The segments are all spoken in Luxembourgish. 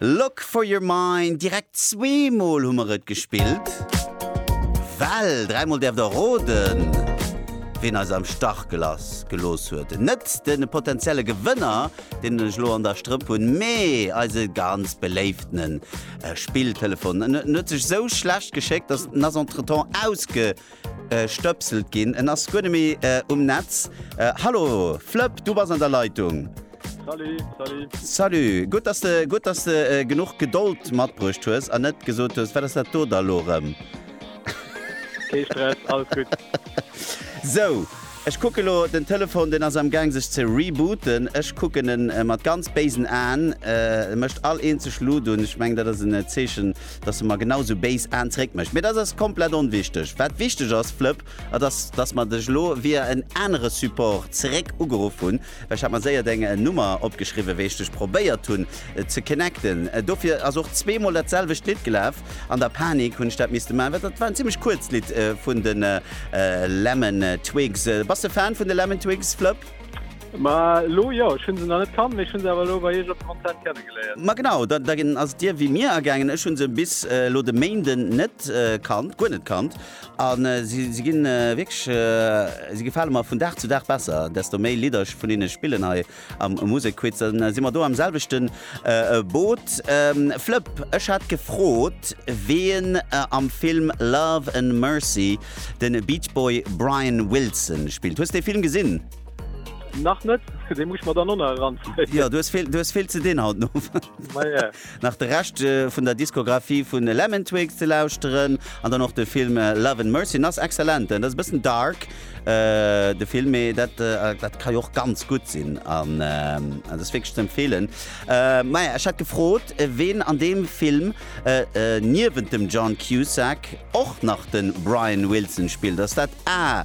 Look for your mind, direkt zweemol hu mer et gespillt. Well dräimol däerft der roden, wien eis am Stach gelass, gelooss huet. Net de potenzielle Gewënner, deen ech elo an der Strëpp hunn, mee eise ganz beléiftene Spilltelefon. En huet sech esou schlecht geschéckt, dass en ass entretemps ausge. Stëpselt ginn. En ass guer net méi um Netz. Hallo Flëpp, du bass an der Leitung. Salut, salut. Salut. Gutt, dass de, gutt, dass de genuch Gedold matbruecht hues an net gesot hues, Wat ass dat do da elo erëm? Kee Stress, alles gutt. Sou. Ech kucken elo den Telefon, deen ass am Gang sech ze rebooten. Ech kucken en mat ganz béisen Aen. E mécht all eenzeg Luut un. Ech mengen dat ass en Zeechen, dass e mer genau esou béis Aen zeréck mécht. Mee dat ass komplett onwichteg. Wat wichteg ass, Flëpp, dat ass, dass mer dech elo via en anere Support zeréck ugeruff hunn. Ech hat mer séier deng Nummer opgeschriwwen wéi ech dech probéiert hunn ze connecten. Dofir ass och zweemol dat selwecht Lidd gelaf. An der Panik hunn ech dat misste man, well dat war en zimmlech kuerzt Lidd vun de Lemon Twigs. Bass de Fan vun de Lemon Twigs, Flëpp? Ma elo jo. Ech hunn se nach net kannt, mee ech hunn se awer elo bei iech op dem Konzert kenne geléiert. Ma genau, da ass et dir wéi mir ergaangen. Ech hunn se bis elo de Méinden net kannt, guer net kannt. A si ginn wierklech, si gefale mer vun Dag zu Dag besser, desto méi Lidder ech vun hinne spillen hei am Musekquiz. Dann si mer do am selwechten Boot. Flëpp, ech hat gefrot, wien am Film Love and Mercy de Beachboy Brian Wilson spillt. Hues dee Film gesinn? Nach net, dee muss ech mer dann och nach eranzéien. Jo, du hues vill ze dinn haut den Owend. nach de Rescht vun der Diskografie vu Lemon Twigs ze lauschteren an dann och de Film Love and Mercy, en ass excellent. En ass e bëssen dark de Film, mee dat dat ka jo och ganz gutt sinn an dat ass wierklech ze empfeelen. Maja ech hat gefrot ween an deem Film niewent dem John Cusack och nach de Brian Wilson spillt. Ass dat A.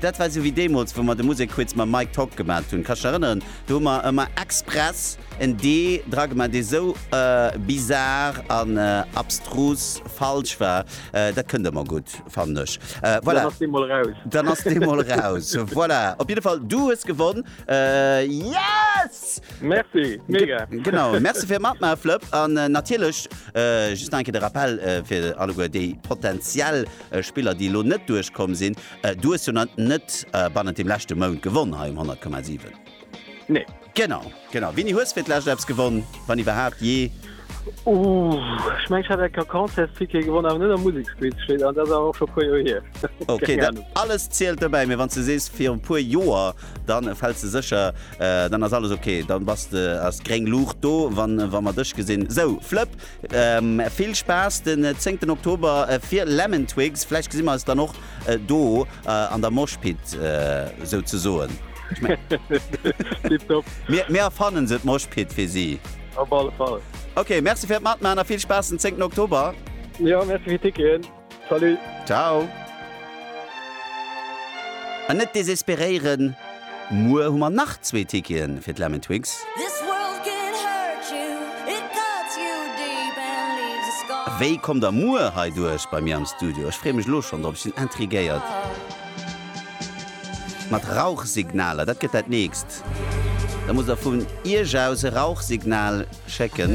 Dat war esou wéi deemools, wou mer de Musek Quiz mam Mike Tock gemat hunn. Kanns de dech erënneren? Do hu mer ëmmer express en D dra gemaat, dee sou bizar an abstrus falsch war. Dat kënnt ëmmer gutt, fannen ech. Voilà. Dann ass dee mol raus. Dann ass dee mol raus. Voilà. Op jidde Fall, du hues gewonn. Yes! Merci. Mega. Genau. Merci fir matmaachen, Flëpp. An natierlech, just nach eng Kéier de Rappel fir alleguer, déi potentiell Spiller déi elo net duerch komm sinn. Du hues jo nach net bannent dem leschte Mount gewonn hei um 100,7. Nee. Genau, genau. Winni, hues fir d'lescht eppes gewonn, wann iwwerhaapt jee? Ooh, ech mengen ech hat enker Concertsticket gewonn, awer net am Museksquiz, steet an, dat ass awer och scho e puer Joer hier. Ok, Keng dat Ahnung. alles zielt dobäi, mee wann s de sees viru puer Joer, dann fäls de sécher, dann ass alles ok, dann bass de, ass gréng Luucht do, wann, wa mer dech gesinn. Sou, Flëpp, Vill Spaass den 10 Oktober fir Lemon Twigs, vläicht gesi mer eis dann och do an der Mosh Pit souzesoen. Tiptop. Mir erfannen se, d'Mosh Pit fir si. Op alle Fall. Ok, Merci fir d'Matman a vill Spaass den 10 Oktober. Jo, Merci fir d'Ticketen. Salut! Ciao! An net desesperéieren, muer hu mer nach zwee Ticketen fir d'Lemon Twigs. Wéi kommt der muer hei duerch bei mir am Studio? Ech freeë mech elo schonn drop, ech sinn intriguéiert. Mat Rauchsignaler, dat gëtt dat nächst. Da musst der vun Iech aus e Rauchsignal schécken.